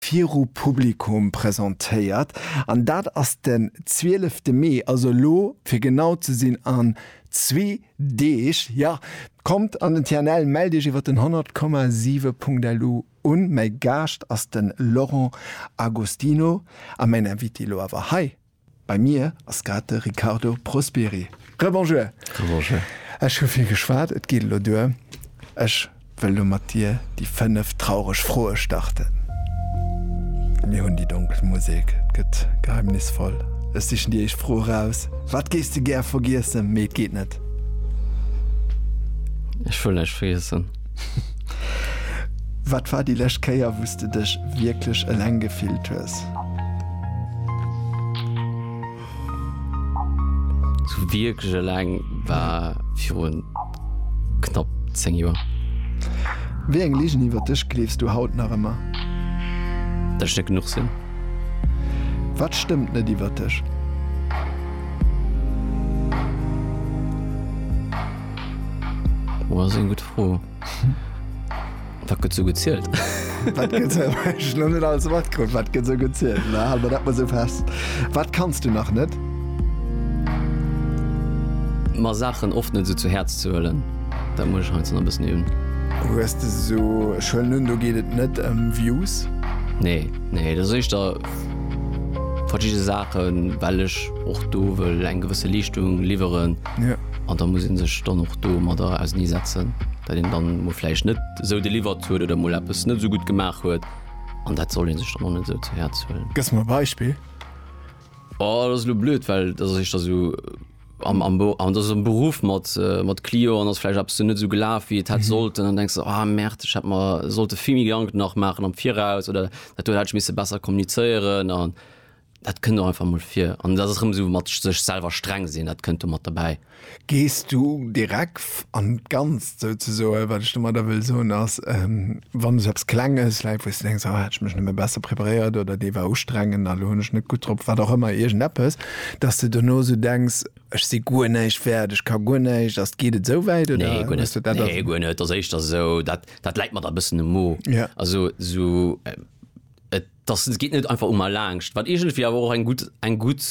viru Publikum presentéiert an dat ass den 12 te Mee, also elo fir genau ze sinn an zwee Deeg. Jo, kommt an den TNL, mellt iech iwwer den 100,7.lu un. Mäi Gaascht ass den Laurent Agostino a mäin Invité elo awer hei. Bei mir ass grad de Riccardo Prosperi. Rebonjour. Rebonjour. Ech hu vill geschwat, et geet elo duer. Ech wëll elo mat dir déi 5 traureg Froe starten. Mir hunn déi donkel Musek, et gëtt geheimnisvoll. Ech sichen déi éischt Fro eraus, Wat géifs de gär vergiessen, mee et geet net? Ech wëll näischt vergiessen. Wat war déi lescht Kéier, wou s de dech wierklech eleng gefillt hues? Sou wierklech eleng war virun knapp 10 Joer. Wéi eng Ligen iwwer dech gleefs du haut nach ëmmer? Datt ech net genuch sinn. Wat stëmmt net iwwer dech? Oh, ass eng gutt Fro. Wat gëtt sou gezielt? Wat gëtt sou, ech hunn net alles matkritt, wat gëtt sou gezielt? Ma hale mer dat mol sou fest. Wat kanns du nach net? Mer Saachen oft net sou zu Häerz ze huelen, dat muss ech heiansdo nach e bëssen iewen. Hues de sou, ech huelen un, do geet et net ëm Views? Nee, nee, dat ass éischter verschidde Saachen, well ech och do wëll eng gewësse Leeschtung liwweren. An da muss ee sech dann och domadder auseneesetzen, datt een da mol vläicht net esou deliwert huet oder mol eppes net esou gutt gemaach huet. An dat soll ee sech dann och net esou zu Häerz huelen. Gëss mer e Beispill? Oh, dat ass elo blöd, well dat ass éischter esou am, am, an dat ass am Beruff mat, mat Clienten, ass vläicht eppes net esou gelaf, wéi et hätt sollten. An da denks de, oh Merde, ech hätt mer sollte vill méi Gedanken nach maachen am Viraus oder dat do hätt ech misse besser kommunizéieren. An Dat kënnt och einfach mol vir. An dat ass erëm esou mat sech selwer streng sinn, dat kënnt do mat derbäi. Gees du direk an d'Ganzt souzesoen? Wat ech domadder wëll soen ass, wann esou eppes Klenges läit, wou s de denks, oh hätt ech mech nëmme besser preparéiert oder dee war ustrengend a lo hunn ech net gutt drop, wat och ëmmer, iergendeppes, dass de dono esou denks, ech si guer näischt wäert, ech ka guer näischt. Ass, geet et esou wäit oder hues de dat? Nee, guer net. Nee, guer net. Ass éischter esou, dat, dat läit mer da e bëssen um Mo. Also esou, Dass geet net einfach un mer laangscht, wat iergendwéi awer och eng gutt eng gutt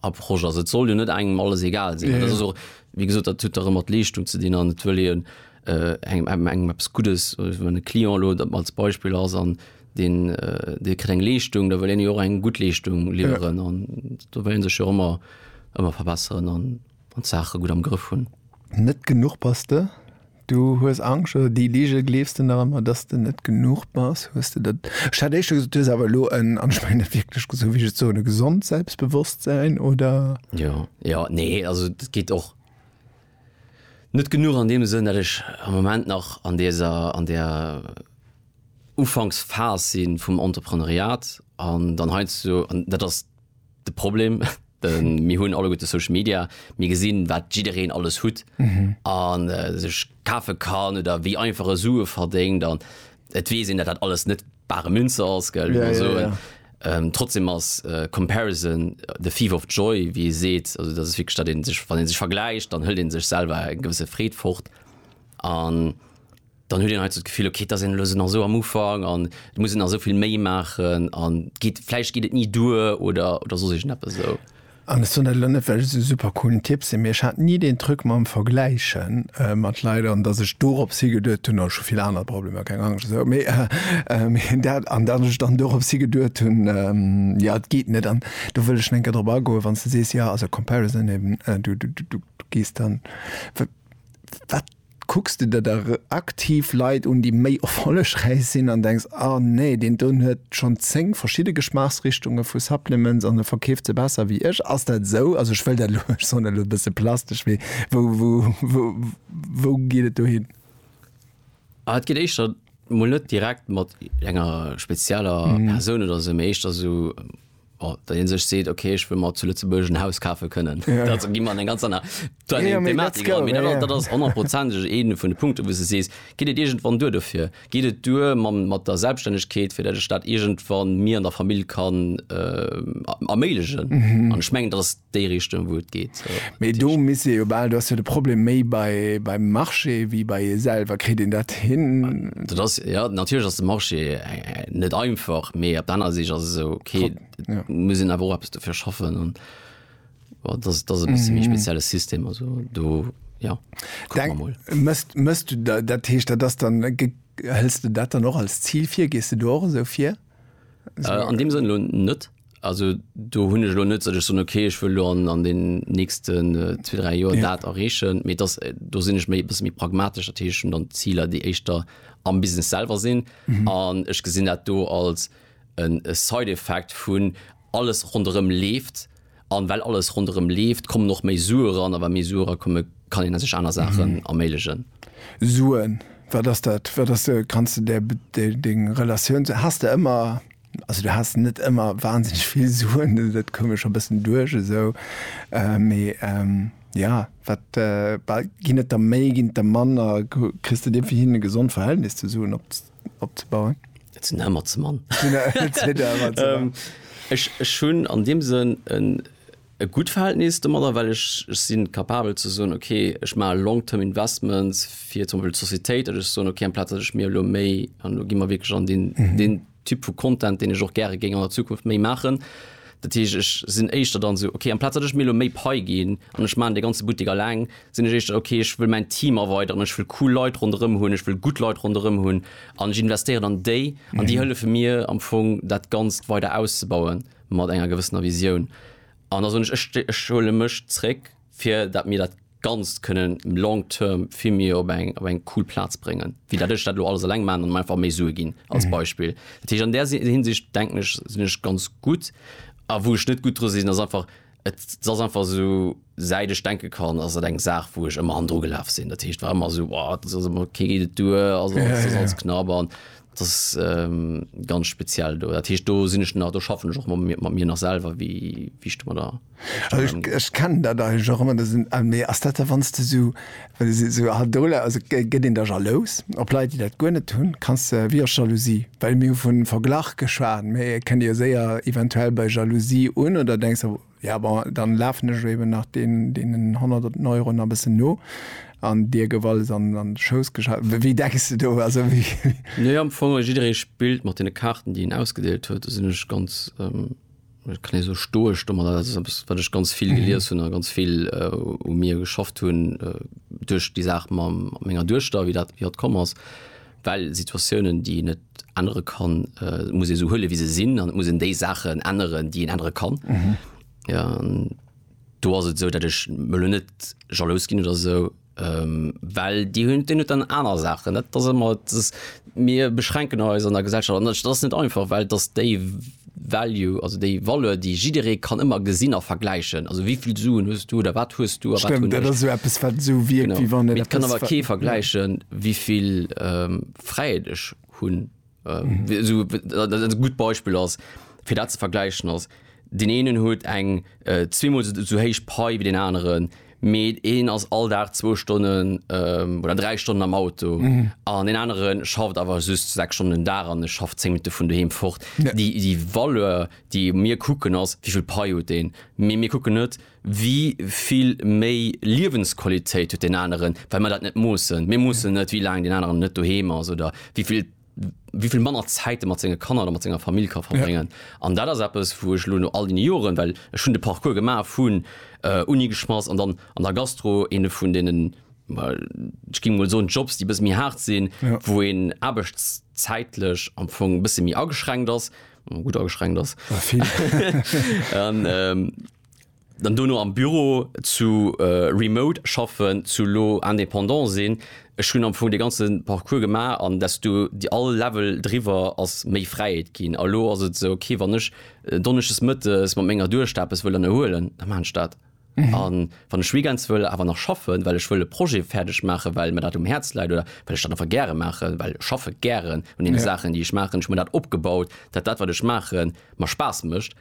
Approche ass. Et soll jo net engem alles egal sinn. Dat ass och, wéi gesot, dat huet erëm mat Leeschtung ze dinn an et wëll een engem engem engem eppes Guddes, wann e Client elo dat als Beispill ass an deen dee kritt eng Leeschtung, da wëll een jo och eng gutt Leeschtung liwweren an do wëll ee sech jo ëmmer ëmmer verbesseren an. wann d'Saache gutt am Grëff hunn. Net genuch bass de? Du hues Angscht oder déi Lige gleefs de nach ëmmer, dass de net genuch bass? Hues de dat? Ech hat éischter gesot, du hues awer elo en, an ech mengen dat wierklech, esou wéi ech et soen, e gesond Selbstbewusstsein, oder? Jo, jo, nee, also dat geet och net genuch an deem Sënn, dat ech am Moment nach an deser, an där Ufanksphas si vum Entrepreneuriat an dann heiansdo, an dat ass, de Problem. Mir hunn alleguerte Social Media, mir gesinn, wat jiddereen alles hutt an sech kafe kann oder wéi einfach e Sue verdéngt. An et weess een, datt dat alles net bare Münze ass, gell, wéi mer soen. Trotzdem ass Comparison the thief of joy, wéi ee seet. Also dat ass wierklech, datt ee sech, wann ee sech vergläicht, dann hëlt ee sech selwer eng gewësse Freed fort an. dann huet een hei sou d'Gefill, okay, et ass een elo sou nach sou am Ufank an et muss een nach sou vill méi maachen an et geet, vläicht geet et ni duer oder, oder soss iergendeppes esou. An ech soen dat elo net, well ech esou super coolen Typ sinn, mee ech hat ni deen Truc mam Vergläiche mat Leit an dass ech dorops higeduet hunn, oh ech hu vill aner Problemer, keng Angscht esou, mee dat, an dass ech dann dorops higeduet hunn, jo et geet net. An do wëll ech nach eng Kéier drop agoen, wann s de sees, jo also comparison eben, du, du, du gees dann, wat, Kucks de der da aktiv Leit un, déi méi erfollegräich sinn an denks, ah nee, deen do huet schonn 10 verschidde Geschmaachsrichtunge vu Supplements an e verkeeft se besser wéi ech? Ass dat esou? Also ech wëll dat elo, ech soen dat elo e bësse plastesch, mee wou geet et do hin? Ah et geet éischter mol net direkt mat enger spezieller Persoun oder esou, mee éischter esou, Bon, wann een sech seet, okay, ech wëll mer zu Lëtzebuerg en Haus kafe kënnen, da gi mer an eng ganz aner Thematik eran. Mee dat ass honnertprozenteg ee vun de Punkte, wou s de sees, geet et iergendwann duer dofir? Geet et duer mat der Selbststännegkeet, fir datt ech dat iergendwann mir an der Famill kann erméiglechen? An ech mengen, dat ass déi Richtung wou et geet. Mee do misst ee jo bal, do ass jo de Problem méi bei beim Marché wéi bei ee selwer. Kritt een dat hin? Dat ass, jo natierlech ass de Marché net einfach, mee op der anerer Sich ass esou ok, muss een awer och eppes dofir schaffen an dat ass e bësse méi spezielle System. Also do jo kucke mer mol. Mësst mësst du da, dat heescht dat ass dann, hëls de dat dann och als Zil vir? Gees de do och esou vir? An deem Sënn elo net. Also do hunn ech elo net, datt ech soen, okay ech wëll elo an an den nächsten zwee, dräi Joer dat erreechen, mee dass, do sinn ech méi e bësse méi pragmatesch. Dat heescht, ech hunn dann Ziler, déi éischter am Business selwer sinn an ech gesinn dat do als en Side-Effekt vun, alles ronderëm leeft an well alles ronderëm leeft, kommen och méi Sue ran a wa méi Sue erakomme kann een sech aner Saachen erméiglechen. Suen, wat ass dat? Wat ass, kanns de där deng Relatioun, has de ëmmer. Also du has net ëmmer wahnsinnig vill Suen, dat koum mir scho bëssen duerch esou. Mee jo, wat ginn et der méi, ginn et der manner? Kriss de dir fir hien e gesond Verhältnis zu Suen opzebauen? Et sinn der ëmmer ze mann. Ech hunn an deem Sënn en. e gutt Verhältnis domadder, well ech sinn capabel ze soen, ok, ech maache long term investments fir zum Beispill d'Societéit, datt ech soen, ok, amplaz datt ech mir elo méi, an elo gi mer wierklech an deen, deen Typ vu Content, deen ech och gäre géing an der Zukunft méi maachen, dat heescht, ech sinn éischter dann esou, ok, amplaz datt ech mir elo méi Pai ginn an ech maachen dee ganze Buttek eleng, sinn ech éischter, ok, ech wëll mäin Team erweideren, ech wëll cool Leit ronderëm hunn, ech wëll gutt Leit ronderëm hunn an ech investéieren an déi an déi hëllefe mir am Fong dat Ganzt weider auszebauen. mat enger gewëssener Visioun. An da soen ech, ech, ech huele mech zréck, fir datt mir dat Ganzt kënnen long term vill méi op eng, op eng cool Plaz bréngen, wéi datt ech dat elo alles eleng maachen an einfach méi Sue ginn, als Beispill. Dat heescht, an där Hinsicht denken ech, sinn ech ganz gutt. A wou ech net gutt dru sinn, ass einfach, Et ass einfach esou, säit ech denke kann, ass et eng Saach, wou ech ëmmer hannendru gelaf sinn. Dat heescht, et war ëmmer esou, Boah, et ass ëmmer, kee geet et duer, ass alles, ass alles knapp. An et ass ganz speziell do. Dat heescht, do sinn ech nach, do schaffen ech och mat mir, mat mir nach selwer, wéi ech domadder. Also ech kennen dat eigentlech och ëmmer, da sinn, ah nee, ass dat da, wann s de esou Esou hat Douleur, also gëtt een da jalous op Leit, déi dat guer net hunn? Kanns de, wéi ass Jalousie? Well mir hu vun Verglach geschwat, mee et kënnt jo séier eventuell bei Jalousie un, oder denks de, ja bon, dann lafen ech eben nach deenen honnerten Euroen e bëssen no an dir gouf alles an de Schouss geschaf? Wéi denks de do? Also wéi. Nee, am Fong, jidderee spillt mat deene Kaarten, déi een ausgedeelt huet. Do sinn ech ganz. Et kann ee sou stoesch domadder, dat ass eppes, wat ech ganz vill gelies hunn a ganz vill u mir geschafft hunn duerch déi Saach ma menger Duechter, wéi dat, wéi dat komm ass. Well Situatiounen, déi een net ännere kann, muss ee sou huele wéi se sinn an et muss een déi Saachen änneren, déi een ännere kann. An do ass et esou, datt ech elo net jalous ginn oder esou. Well déi hunn, deen huet dann aner Saachen. Dat ass ëmmer, et ass, mir beschränken eis an der Gesellschaft an dat ass net einfach, well dass déi Value, also déi Valeur, déi jidderee kann ëmmer gesinn a vergläichen, also wéi vill Suen hues du oder wat hues du a wat hunn ech. Stëmmt, dat ass esou eppes, wat esou wierkt, wéi wann et eppes. Mee et kann awer kee vergläichen, wéi vill Fräiheet ech hunn. äh, so, äh, gut Beispiel ass fir dat ze vergleichen ass den enen huet eng äh, zwemal so héich Pai wie den anderen Mee een ass all Dag 2 Stonnen ähm, oder 3 Stonnen am Auto mhm. an mhm. den anderen schafft awer just 6 Stonnen da an schafft 10 Minuten vun duheem fort. Ja. Die, die Valeur, déi mir kucken ass, wievill Pai huet den. Mee mir kucken net, äh, Wéi vill méi Liewensqualitéit huet deen aneren, well mer dat net moossen? Mir moossen net, wéi laang deen aneren net doheem ass oder wéi vill, wéi vill manner Zäit e mat senge Kanner oder mat senger Famill ka verbréngen. An dat ass eppes, wou ech elo no all deene Joren, well ech hunn de Parcours gemaach vun Uni geschmass an dann an der Gastro, eene vun deenen, ech géing emol soen, Jobs, déi e bësse méi haart sinn, wou een aarbechtszäitlech am Fong e bësse méi ageschränkt ass, gutt ageschränkt ass. dann dono am Büro zu remote schaffen, zu elo indépendant sinn, ech hunn am Fong dee ganze Parcours gemaach an desto déi all Level driwwer ass méi Fräiheet ginn. A elo ass et esou, okay, wann ech donneschdes mëttes mat menger Duechter eppes wëll ënnerhuelen, da maachen ech dat. A wann ech weekends wëll awer nach schaffen, well ech wëll e Projet fäerdeg maachen, well mir dat um Häerz läit oder well ech dat einfach gäre maachen, well ech schaffe gären un deene Saachen, déi ech maachen, ech hunn mir dat opgebaut, dat dat wat ech maachen, mer Spaass mécht,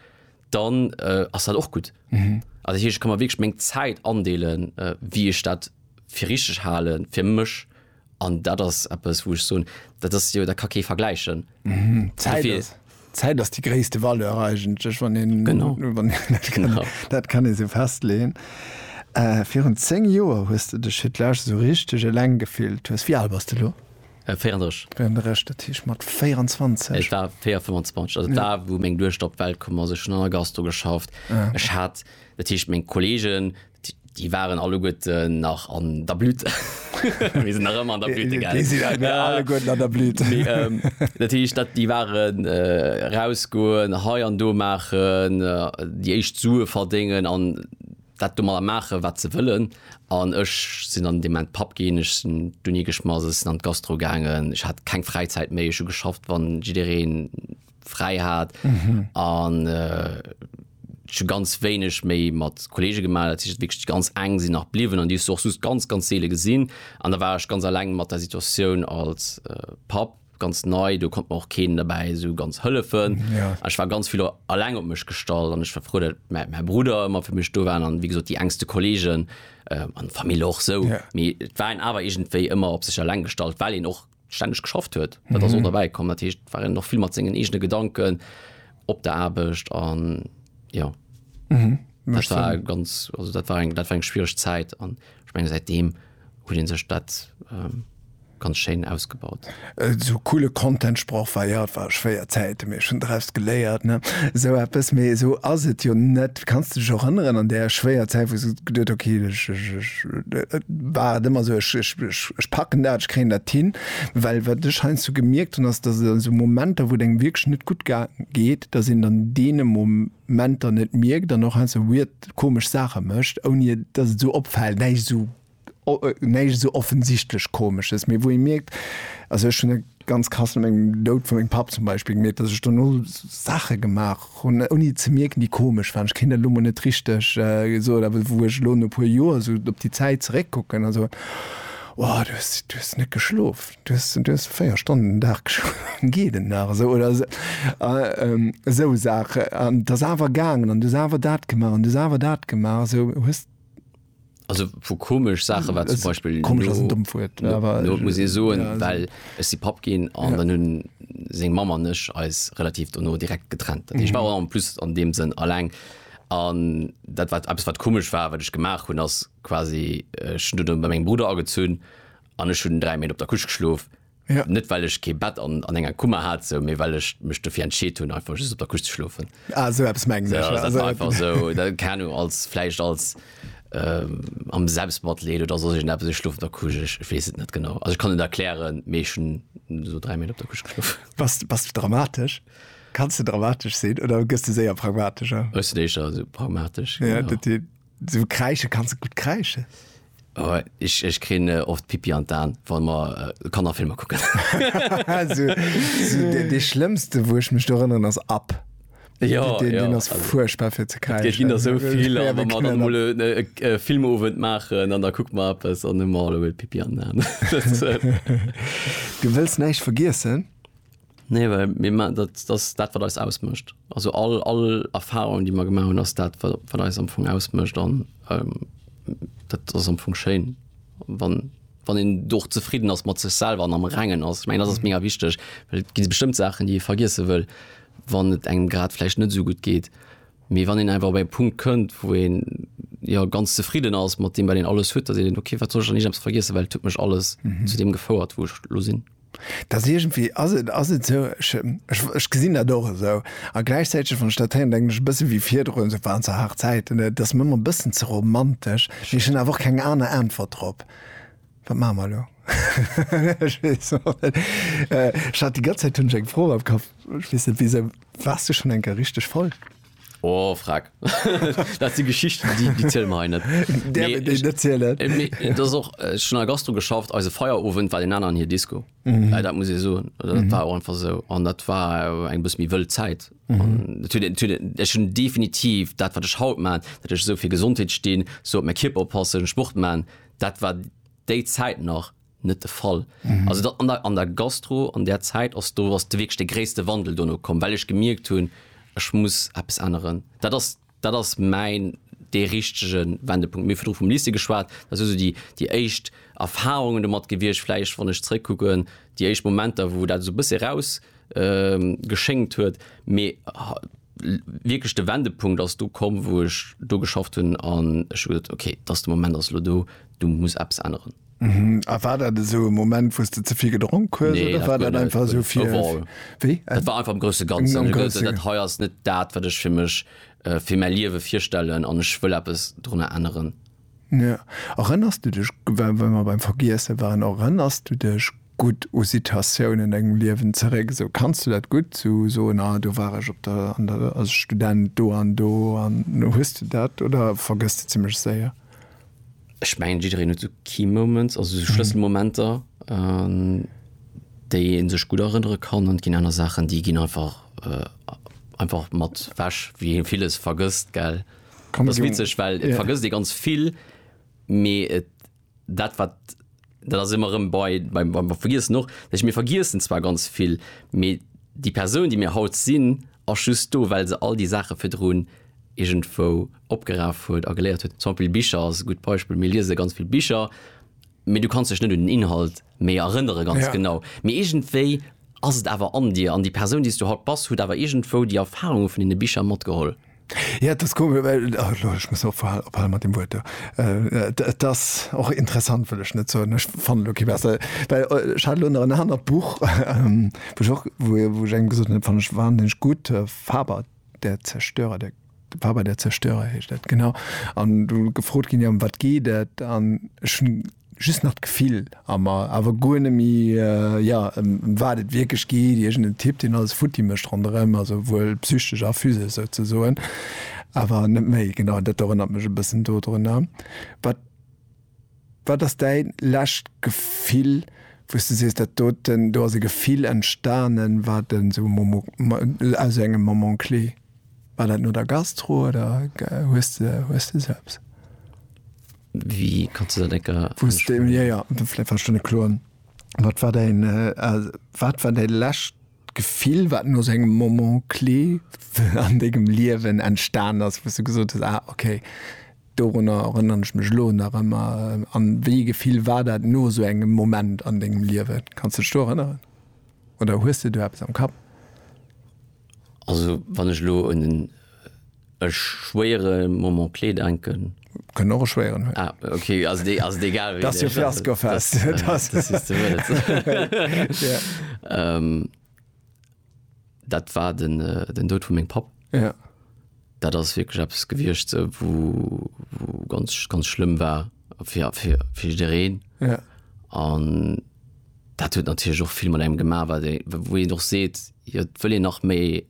dann äh, ass dat och gut. Mhm. Also hier, ich kann man wirklich meng Zeit andeelen, äh, wie ich dat fir richtig halen fir mech an dat ass Apps wo ich so dat ass jo der Kacke vergleichen. Mhm. Zeit, ist, Zeit ass die gréste Valeur eigentlech wann den genau. Wann, dat, kann, genau. dat kann e se festleen. Äh, virun 10 Joer hues du dech fir d'Lage so richtig eleng gefillt hues. Wie alt bas du lo? 34. 34, dat heescht mat 24. Et war 4, 25, also d'A wou meng Duechter op d'Welt komm ass. Ech hunn an der Gastro geschafft. Ah, okay. Ech hat, dat heescht meng Kolleegen, déi déi waren alleguerten nach an der Blüte. Mir sinn nach ëmmer an der Blüte, gell? Déi sinn ëmmer alleguerten an der Blüte. Mee ähm, dat heescht, dat déi waren erausgoen, hei an do maachen, déi éischt Sue verdéngen an, dat do mat der maachen wat se wëllen an ech sinn dann an deem Moment Papp ginn, ech sinn dunn igeschmass, ech sinn an d'Gastro gaangen, ech hat keng Fräizäit méi, ech hu geschafft wann jiddereen fräi hat an ech hu ganz wéineg méi mat Kollege gemaach, dat heescht wierklech déi ganz eng sinn nach bliwwen an déi hues du och soss ganz ganz seele gesinn an da war ech ganz alleng mat der Situatioun als Papp. ganz nei do konnt och keen dabei so ganz hëllefen ja. ich war ganz viel alleng op mech gestalt an ich war froh dat mein, mein Bruder immer für mech do waren an wie gesagt die engste Kollegen äh, an Familie och so ja. mir waren awer egentéi immer op sech alleng gestalt weil en och ständig geschafft huet mhm. so dabei kom dat hecht waren noch viel mat sengen egene Gedanken op der Abcht an ja mhm. das war ganz also dat war eng dat war eng schwierig Zeit an ich mein, seitdem huet een sech dat ganz schéin ausgebaut. Esou coole Content Sproch wei haut war schwéier Zäiten, mee ech hunn draus geléiert, ne esou eppes. Mee esou ass et jo net. Kanns de dech och erënneren an där schwéier Zäit, wou s du geduet hues, okay, ech, ech, ech, et war et ëmmer esou, ech, ech, ech, ech packen dat, ech kréien dat hin. Well wat ech heiansdo gemierkt hunn, ass, dass et an esou Momenter, wou et engem wierklech net gutt geet, dass een dann deene Mo, Menter net mierkt an och heiansdo esou weird, komesch Saache mécht, ouni dass et esou opfält, näischt esou, näischt esou offensichtlech Komesches, mee wou ee mierkt, also ech hunn e ganz krass no mengem Doud vu mengem Papp zum Beispill gemierkt, dass ech dono Saache gemaach hunn, ouni ze mierken, déi komesch waren. Ech kéint dat elo mol net richteg soen, awer wou ech elo no e puer Joer esou op déi Zäit zeréckkucken a soen, Wow, du hues net geschlof! Du hues 4 Stonnen den Dag geschlof, geet et nach esou? Oder esou Saachen. An et ass awer gaangen an du hues awer dat gemaach an du hues awer dat gemaach. Esou hues. Also vu komesch Saache war zum Beispill. Komesch ass en dommt Wuert, mä awer. Lo muss ee soen, well ech si Papp ginn an dann hunn seng Mamm an ech eis relativ dono direkt getrennt. Dat heescht, ech war en plus an deem Sënn alleng an dat wat eppes wat komesch war, wat ech gemaach hunn, ass quasi ech hunn dunn bei mengem Brudder agezunn an ech hunn 3 Méint op der Couche geschlof. Ja. Net well ech kee Bett an, an enger Kummer hat, sou, mee well ech mech dofir entscheet hunn, einfach just op der Couche ze schlofen. Ah, sou eppes mengen ech. Ja, also, einfach sou, da, keine Ahnung, als, vläicht als ähm, am Selbstmatleed oder soss irgend eppes, ech schlof op der Couche, ech, ech weess et net genau. Also ech kann et erklären, mee ech hunn sou 3 Méint op der Couche geschlof. Bass, bass du dramatesch? Kanns du dramatesch sinn oder gëss du séier pragmatescher? Ech sinn éischer sou pragmatesch. Ja, genau. dat, So kreische kannst du gut kreische. Oh, ich, ich kri äh, oft Pipi an Dan, wann man äh, kann nach Filme gucken. also, so, de, de schlimmste wo ich mich da erinnern ass ab. Ja, den, ja. den ass furchtbar fir ze kreischen. Gin der so viel ja, man dann mol äh, äh, Filmowend machen an da guck mal ab es an mal Pipi an. du willst neich vergiessen? Nee, well mir ma dat, dat ass dat, wat eis ausmécht. Also all, all Erfahrung, déi mer gemaach hunn, ass dat, wat, wat eis am Fong ausmécht. An ähm, dat ass am Fong schéin, wann, wann een do och zefridden ass mat sech selwer an am Rengen ass. Ech mengen, dat ass mega wichteg, well et gi bestëmmt Saachen, déi ee vergiesse wëll, wann et engem grad vläicht net esou gutt geet. Mee wann een einfach op e Punkt kënnt, wou een jo ganz zefridden ass mat deem, wat een alles huet, da seet een, okay, wat soll ech dann ijems vergiessen, well et huet mech alles zu deem gefouert, wou ech lo sinn. Dass iergendwéi ass et, ass et esou, ech, ech, ech gesinn dat och esou. A gläichzäiteg, wann ech dat héieren, denken ech e bësse wéi virdrun, esou waren zwar haart Zäiten, et ass mir ëmmer e bëssen ze romantesch. Mee ech hunn awer och keng aner Äntwert drop. Wat maache mer elo? Ech weess och net. Ech hat déi ganz Zäit hunn ech eng Fro am Kapp, ech weess net wisou. Waars du schonn eng Kéier richteg voll? Oh, frag. dat si Geschichten, déi, déi zielen mer hei net. Där mir déi net zielen. Äh, mee, äh, dat ass och, äh, ech hunn a Gastro geschafft, eise Feierowend war den aneren hir Disco. Mhm. Äh, dat muss ee soen. Dat mhm. war och einfach sou. An dat war äh, eng bëss méi wëll Zäit. Mhm. Ech hunn definitiv dat, wat ech haut maan, dat ech sou fir Gesondheet stinn, sou op mé Kierper oppassen, Sport maan, dat war déi Zäit nach net de Fall. Also an der an der Gastro an där Zäit ass do ass de wierklech de gréisste Wandel dono komm, well ech gemierkt hunn, ech muss eppes änneren. Dat ass dat ass mäin dee richtege Wendepunkt. Mir hu virdru vum Lycée geschwat, dat si sou déi déi éischt Erfarungen domat gewiescht, vläicht wann ech zeréckkucken, déi éischt Momenter, wou dat esou e bëssche eraus geschéngt huet, mee. wierklech de Wendepunkt ass do komm, wou ech do geschafft hunn an ech hu gesot, okay, dass de Moment ass elo do, do muss eppes änneren. A war dat esou e Moment, wou s de ze vill gedronk hues? Nee, dat guer net, overall. Wéi? Dat war einfach am grousse Ganzen. Am grousse. Dat hei ass net dat, wat ech fir mech, fir mäi Liewe virstellen an ech wëll eppes dorunner änneren. Ja, erënners du dech, well mer beim Vergiesse waren, erënners du dech gutt u Situatiounen an dengem Liewen zeréck? Esou, kanns du dat gutt esou soen, ah do war ech op der, an der, als Student do an do an, hues du dat oder vergëss de zimmlech séier? Ech mengen, jiddereen huet esou Key Moments, also esou Schlësselmomenter, un déi ee sech gutt erënnere kann. An et ginn aner Saachen, déi ginn einfach, einfach mat wech, wéi ee villes vergësst, gell. Kann das witzeg well yeah. vergëss dir ganz vill me et dat wat dat as immer rem bei beim beim vergiers noch ech mir vergiessen zwar ganz vill me die person die mir haut sinn a just do well se all die sache firdroen irgendwo opgeraf huet a geleiert huet zum beispiel bicher as gut beispiel mir lise ganz viel bicher me du kannst sech net den inhalt me erënnere ganz yeah. genau mir irgendwei ass et awer an dir an die person die du haut bas hut awer irgendwo die erfahrung vun den bicher matgeholl Ja, et ass komesch, well, lo, ech muss ophal, ophale mat deem Wuert do. Et ass och interessant, wëll ech net soen, ech fannen elo kee bessere, well ech hat elo nach en anert Buch, wou ech och, wou, wou ech engem gesot hunn, dat fannen ech wahnsinnig gutt, Faber, der Zerstörer, der, Faber, der Zerstörer heescht dat, genau. An do gefrot ginn, jo ëm wat geet dat? An ech hunn. just nach d'Gefill a mer, awer guer net méi, jo, ëm wat et wierklech geet, iergendeen Typ, deen alles futti mécht ronderëm, also wuel psychesch a physesch souzesoen, awer net méi. Genau, dat erënnert mech e bëssen dodrunner. Wat, wat ass däi lescht Gefill, wou s de sees, dat doten, do ass e Gefill entstanen, wat en esou Momo, aus esou engem Moment clé, war dat no der Gastro oder hues de, hues de esou eppes? Wéi kann ze dat ecker. Wat war däin wat war däi lescht Gefill, wat no esou engem Moment clé an dengem Liewen entstan ass, wou s du gesot hues, ah okay, dorunner erënneren ech mech elo nach ëmmer? A wéi ee Gefill war dat no esou engem Moment an dengem Liewen? Kanns de dech do erënneren oder hues de do eppes am Kapp? Also wann ech elo un en e schwéiere Moment clé denken. Kënnt och e schwéieren hunn. Ah, okay, ass et ass et egal wéi. Dat ass jo Fiaskofest. Dat sichs de wëlles. Ja. Dat war den Doud vu mengem Papp. Ja. Dat ass wierklech eppes gewiescht, wou ganz, ganz schlëmm war fir, fir, fir jiddereen. Ja. An dat huet natierlech och vill mat engem gemaach, wat ee, wou een och seet, jo, et wëll een nach méi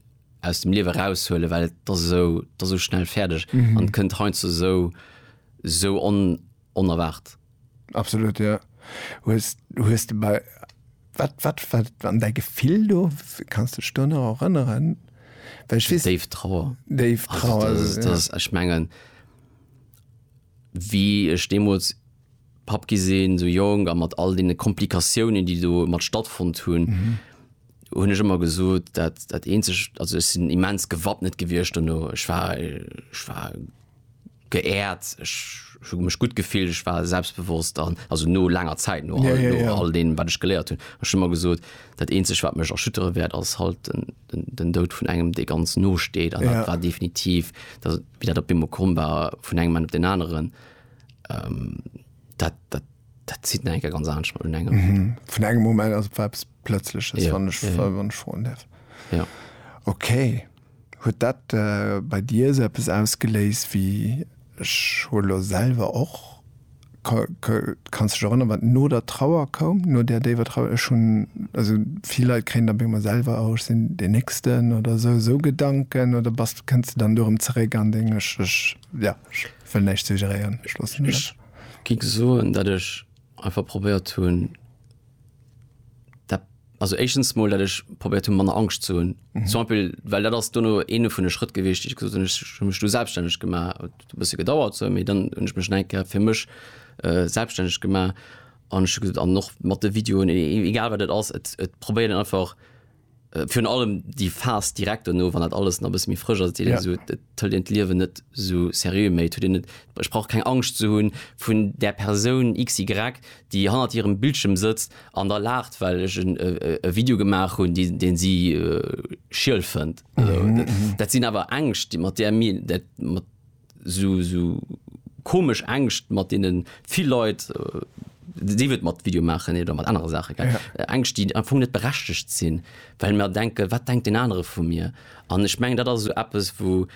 aus dem Liewe raushuelen, well et ass esou, et ass esou schnell fäerdeg an kënnt heiansdo esou, esou onerwaart. Absolut jo. Hues hues de bei wat wat wat an däi Gefill do? Kanns de dech do nach erënneren? Well ech weess. Déif Trauer. Déif Trauer. Also dat dat ech mengen wéi ech deemools Papp gi sinn, esou jonk a mat all deene Komplikatiounen déi do mat stattfonnt hunn, hunn ech ëmmer gesot dat dat eenzegt, also ech sinn immens gewappnet gewiescht dono. Ech war ech war. geehrt, ech hu mech gutt gefillt, ech war selbstbewosst an also no laanger Zäit, no all no all deem wat ech geléiert hunn. Ech hu mer gesot, dat eenzegt wat mech erschüttere wäert ass halt den den den Doud vun engem dee ganz no steet an dat war definitiv dat wéi dat op eemol komm war vun engem Moment op deen aneren dat dat dat zitt nach eng Kéier ganz anescht mat un engem. Vun engem Moment, also et war eppes Plëtzleches wann ech wann ech froen däerf. Jo. Okay. Huet dat bei dir esou eppes ausgeléist wéi ech hu lo selwer och? Kanns dech erënneren, wat no der Trauer koum, no där déiwer Trauer? Ech hunn, also vill Leit kréien dann op eemol selwer, oh ech sinn deen Néchsten oder esou, esou Gedanken oder bass, kënns de dann do erëm zeréck an deng, ech, ech, jo, ech wëll näischt suggéréieren, ech loossen dat. Ech gi soen, datt ech einfach probéiert hunn, Also échtens mol dat ech probéiert hun manner Angscht zu hunn mhm. zum Beispiel, well dat ass duno ene vun de Schrëtt gewicht ich gesot mech du selbstständig gemacht bësse gedauert so, méi dann hunn ech mech enke fir mech äh, selbstständig gemacht an an noch mat de Videoen e, e, egal wat dat ass et, et probéieren einfach Äh, virun allem déi Phas direkt no, wann dat alles na bis méi frësch ass, ja. so, tëll en d'Liewen net so seriö méi tu net sprach keng Angst ze hunn vun der Persoun XY, déi hannert hirem Bildschirm sëtzt an der lacht, well ech en äh, äh, Video gemaach hunn, deen deen si äh, schiel fënnt. Mhm. Dat sinn awer Ängscht, déi mat der mir dat mat sou komesch Ängscht mat deenen vill Leit, sief et mat Video maachen oder mat anere Saachen, gell, Ängscht déi am Fong net berechtegt sinn, well mer denken, wat denkt deen anere vu mir? An ech mengen, dat ass esou eppes, wou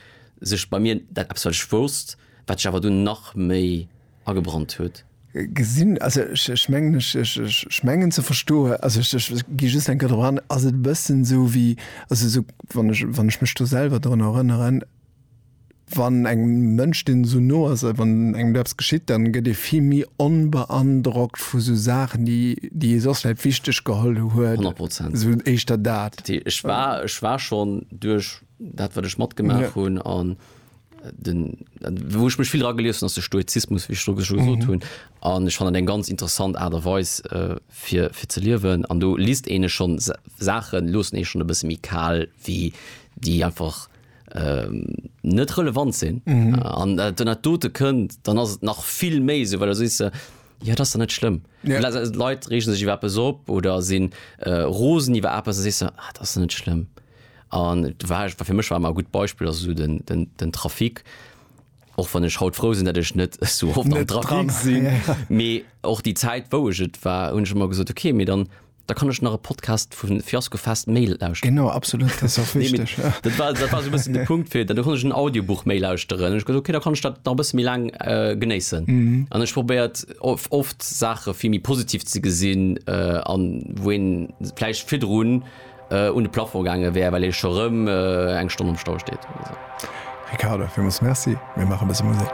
sech bei mir dat eppes, wat ech wousst, wat sech awer dunn nach méi agebrannt huet. Gesinn, also ech mengen, ech mengen ze verstoen, also ech gi just eng Kéier drop an, ass et e bëssen esou wéi, also esou wann ech, wann ech mech do selwer drun erënneren, Wann engem Mënsch, deen esou no ass, wann engem do eppes geschitt, dann gëtt ee vill méi onbeandrockt vu sou Saachen, déi, déi ee soss vläit wichteg geholl huet. Honnert Prozent. Esou éischter dat. T, Ech war, ech war schonn duerch dat, wat ech matgemaach hunn, an den, wou ech mech vill dra gelies hunn, ass de Stoizismus, wéi ech do scho gesot hunn. An ech fannen dat eng ganz interessant Aart a Weis, fir, fir ze liewen. An do liest een e schonn Sa, Saachen loossen ee schonn e bësse méi kal wéi déi einfach. ähm, net relevant sinn mhm. an mhm. äh, den net dote kënnt, dann ass et nach vill méi se, well der si se. Ja dat net schlimm. Ja. Leiit rechen sech iwwer bes op oder sinn äh, Rosen iwwer Apppe se se ah, dat net schlimm. An war fir mech war mar gut Beispiel as den, den, den Trafik och wann ech haut froh sinn, dat ech net so oft net dran sinn. Ja. Mee och die Zäit wouget war hun schon mal gesot okay, mir dann Da kann ech nach e Podcast vun Fiasco Fest méi lauschteren. Genau, absolut, dat ass och Nee, wichteg. Ja. Dat war, dat war so e bëssen de Punkt fir, dann konnt ech en Audiobuch méi lauschteren. Ech gesot, okay, da kann ech dat nach e bësse méi laang äh, genéissen. An ech probéiert of, oft Saache vill méi positiv ze gesinn, äh, an wou een vläicht virdrun äh, un de Plafond gaange wär, well ee scho rëm äh, eng Stonn am Stau steet oder sou. Ricardo, villmools Merci. Mir maache e bësse Musek.